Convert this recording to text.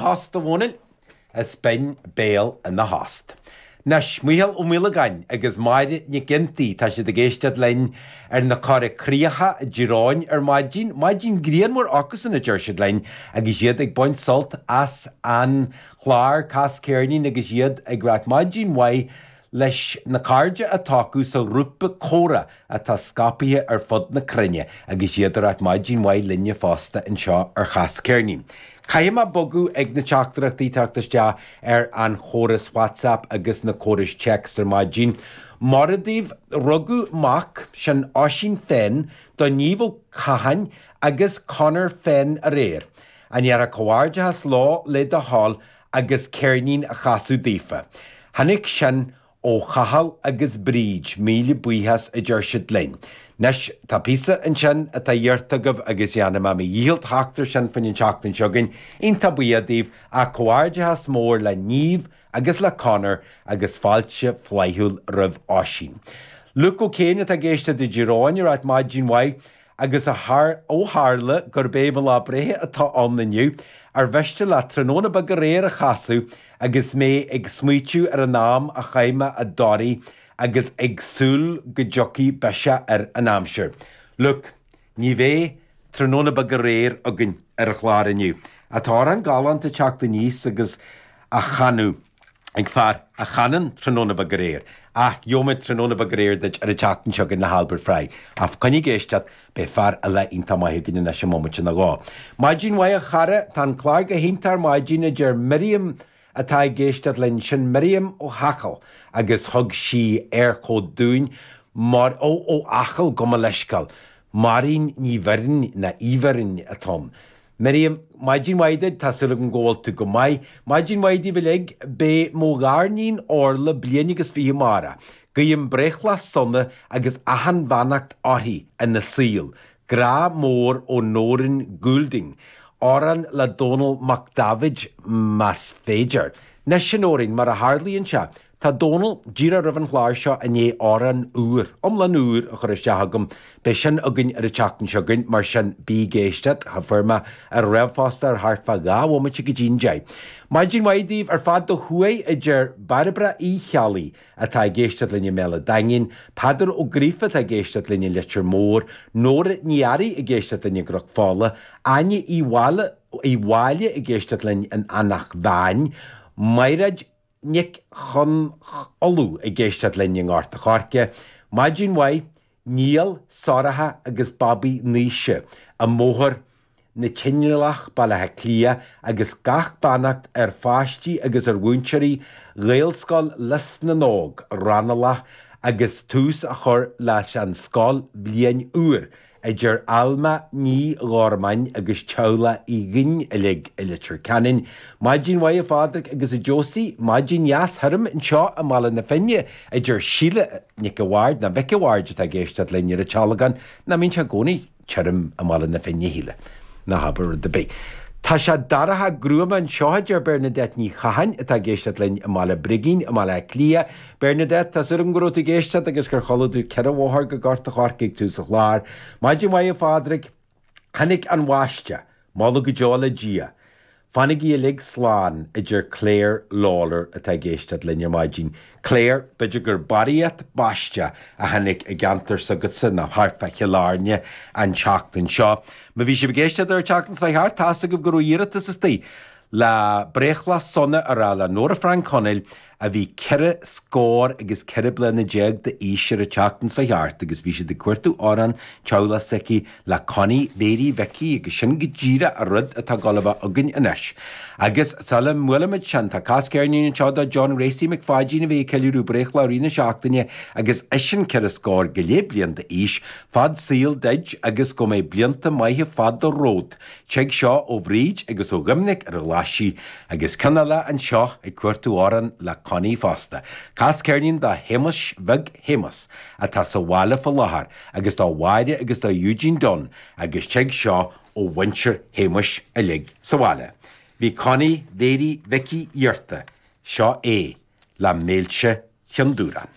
Tost a mhúineadh, is binn béal ina thost. Anois, Micheál Ó Maolagáin agus Máire Nic Ghiontaí, tá siad ag éisteacht linn ar an Chorr Chríochach i dTír Eoghain ar maidin, maidin grianmhar acusan, a deir siad linn, agus iad ag baint sult as an chlár, Cas Ceirnín agus iad ag ráit, Maidin mhaith. Leis na cairde atá acu sa ghrúpa Comhrá atá scaipthe ar fud na cruinne agus iad ag ráit maidin mhaith linne fosta anseo ar Chas Ceirnín. Caithfidh mé bogadh ag na teachtaireachtaí teacht isteach ar an chóras Whatsapp agus an córas téacs ar maidin. Mora daoibh. Rugadh mac, sin Oisín Fenn, do Niamh Ó Catháin agus Conor Fenn aréir. An ndéarfá comhghairdeachas leo le do thoil agus ceirnín a chasadh daofa. Tháinig sin ó Chathal agus Bríd, míle buíochas a deir siad linn. Anois, tá píosa ansin atá iarrta agaibh agus dhéanfaidh mé mo dhícheall theacht air sin faoin an tseachtain seo chugainn, iontach buíoch daoibh, ach comhghairdeachas mór le Niamh agus le Conor agus fáilte flaithiúil roimh Oisín. Luke O'Kane atá ag éisteacht i dTír Eoghain ag ráit maidin mhaith. Agus ó tharla gurb é mo lá breithe atá ann inniu, ar mhiste leat tráthnóna beag aréir a chasadh agus mé ag smaoitiú ar an am a chaith mé i dToraí agus ag súil go dtiocfaidh biseach ar an aimsir? Luke, ní bheidh tráthnóna beag aréir againn ar an chlár inniu. Tá amhrán galánta ag teacht aníos agus á chanadh. ag fear a chanann Tráthnóna beag aréir, Ach gheobhaimid tráthnóna beag aréir duit ar an tseachtain seo chugainn le hAlbert Fry, ach coinnigh ag éisteacht, beidh fear eile iontach maith againn anois i mbomaite nó dhó. Maidin mhaith a chara, tá an clár go hiontach ar maidin, a deir Miriam atá ag éisteacht linn. Sin Miriam ó Acaill agus thug sí éirchód dúinn mar, ó, ó Acaill, gabh mo leithsceál, Máirín Ní Bheirn, nó Uí Bheirn, atá ann. Miriam, Maidin mhaith duit, tá súil agam go bhfuil tú go maith. Maidin mhaith daoibh uilig. Beidh mo ghariníon Orla bliain agus fiche amárach. Guím breithlá sona agus achan bheannacht uirthi ina saol. Grá mór ó Nóirín Goulding. Amhrán le Dónall Mac Daibhéid más féidir. 'Nois a Nóirín, mar a tharlaíonn sé, Tá Dónall, díreach roimh an chlár seo i ndiaidh, amhrán úr, iomlán úr, a chur isteach chugam. Beidh sin againn ar an tseachtain seo chugainn, mar sin, bí ag éisteacht, tá fuair mé ar ríomhphost ar thart fá dhá bhomaite go dtí an deich. Maidin mhaith daoibh ar fad ó thuaidh, a deir Bairbre Uí Cheallaigh, atá ag éisteacht linn i mBéal a' Daingin, Peadar Ó Gríofa atá ag éisteacht linn i Leitir Móir, Nóra Ní Fhearraigh ag éisteacht linn i gCnoc Fola, Áine Uí Uí Mháille ag éisteacht linn in Eanach Mheáin, Maighréad Nic Chon Uladh ag éisteacht linn i nGort a' Choirce, maidin mhaith, Niall, Sorcha agus babaí Naoise i mBóthar na Canálach, Baile Átha Cliath, agus gach beannacht ar pháistí agus ar mhúinteoirí Ghaelscoil Lios na nÓg, Raghnallach, agus tús á chur leis an scoilbhliain úr a deir Alma Ní Ghormáin agus Teaghlach Uí Dhuinn uilig i Leitir Ceanainn, Maidin mhaith a Phádraic agus a Josie, maidin dheas thirim anseo i mBaile na Finne, a deir Síle Nic a Bhaird, nó Mhic a Bhaird atá ag éisteacht linn ar an tSealgán, nach mbíonn sé i gcónaí tirim i mBaile na Finne, a Shíle? Ná habair rud ar bith. Tá sé dorcha gruama anseo, a deir Bernadette Ní Chatháin atá ag éisteacht linn i mBaile Brigín i mBaile Átha Cliath, Bernadette, Tá súil agam go raibh tú ag éisteacht agus gur chuala tú ceithre bhóthar go Gort a' Choirce ag tús an chláir. Maidin mhaith, a Phádraig. Tháinig an bháisteach, moladh go deo le Dia. Fanaigí uilig slán, a deir Claire Lawlor atá ag éisteacht linn ar maidin. Claire, b'fhéidir gur barraíocht báisteach a tháinig i gceantar s'agatsa nó thart fá Chill Airne an tseachtain seo. Má bhí sibh ag éisteacht ar an tseachtain seo chuaigh thart, tá's agaibh go raibh iarratas istigh Lá breithlá sona a rá le Nóra Frainc Chonaill a bhí ceithre scór agus ceithre bliana déag d'aois ar an tseachtain seo chuaigh thart agus bhí siad ag cuartú amhrán, teaghlach s'aici, le Connie Mhary Mhicí agus sin go díreach a rud atá ag gabháil a bheith againn anois agus sula mbuailimid sin tá cas ceirnín anseo do John Ghracie Mac Pháidín a bheidh ag ceiliúradh breithlá i rith na seachtaine agus eisean ceithre scór go leith bliain d'aois, fad saoil duid agus go mbeidh blianta maithe fada romhat. Tig seo ó Bhríd agus ó Dhoiminic ar an Ghlaisigh agus ceann eile anseo ag cuartú amhrán le Connie fosta. Cas ceirnín do Shéamus Bheag Shéamuis atá sa bhaile fá láthair agus do Mháire agus do Eugene Dunne agus tig seo ó mhuintir Shéamuis uilig sa bhaile. Bhí Connie Mhary Mhicí iarrtha. Seo é le Méilte Chionn Dubhrann.